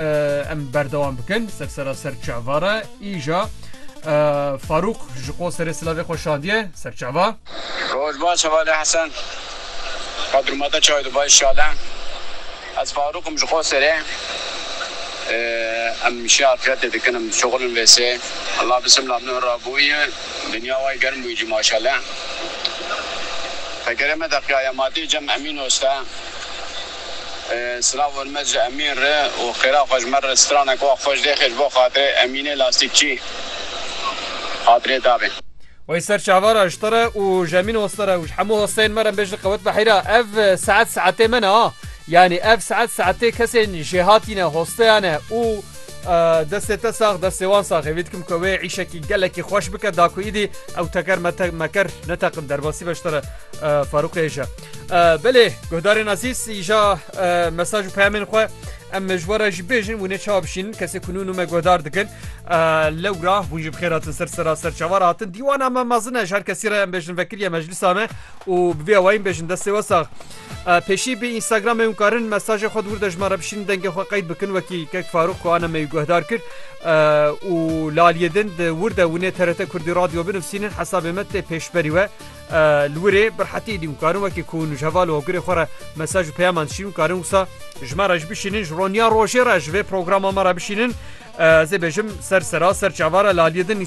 Em berdewam bikin ser sera ser çava re îja Farûq ji qo serê silavê xwe şandiye ser çava. Roj baş hevalê Hesen. Bodruma te çaye dubaye şale. Ez Farûq im ji qo serê. Em şê afretê dikin em dişoxil in vê sê. Ela bisimla min ra bûye. Dinya way germ bûye cî maşale. Tekerê me de qiyayematiye cem Emîn oste. Silav hormet ji Emîn re û xêra xwe ji me re stranek wa xweş dê xêr ji bo xatirê Emînê lastîkçî xatirê dabê. Wey ser çavara ji te re û ji Emîn Hoste re û ji hemû hosteyên me re bê ji li qewet biheyra ev saet saetê me ne ha yanî ev saet saetê kesên jêhatî ne hosteya ne û destê te sax destê wan sax hêvî dikim ku wê îşekî gelekî xweş bike da ku îdî ew teker meker neteqin derbasî be ji te re Farûqê ji Belê guhdarên azîz îja mesaj û peyamên xwe em ji were jî bêjin wî neçawa bişînin kesê ku nû me guhdar dikin lewra hûn ji bixêr hatin ser sera ser çavar hatin dîwana me mezin e ji her kesî re em bêjin vekiriye meclisa me û bi vê awayîn bêjin destê we sax. Pêşî bi Instagram ew karin mesajê xwe dûr de ji me re bişîn dengê xwe qeyd bikin wekî kek Farûq ku ana me wî guhdar kir û laliyê din di wir de winê TRT Kurdî radyo binivîsînin hesabê me tê pêşberî we Li wir ê bi rehetî dîm karin wekî ku hûn ji heval û hokirê xwe re mesaj û peyaman dişînin karin wisa ji me re ji bişînin ji roniya rojê re ji vê programa me re bişînin ez ê bêjim ser sera ser çava re li aliyê din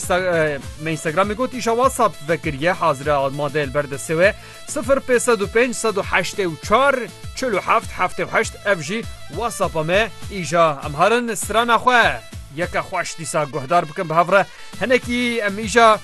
me Instagramê got îşa WhatsApp vekiriye hazir e madeyê li ber destê wê 0505844777 ev jî WhatsAppa me îşa em harin strana xwe yeke xweş dîsa guhdar bikin bi hev re hinekî em îşa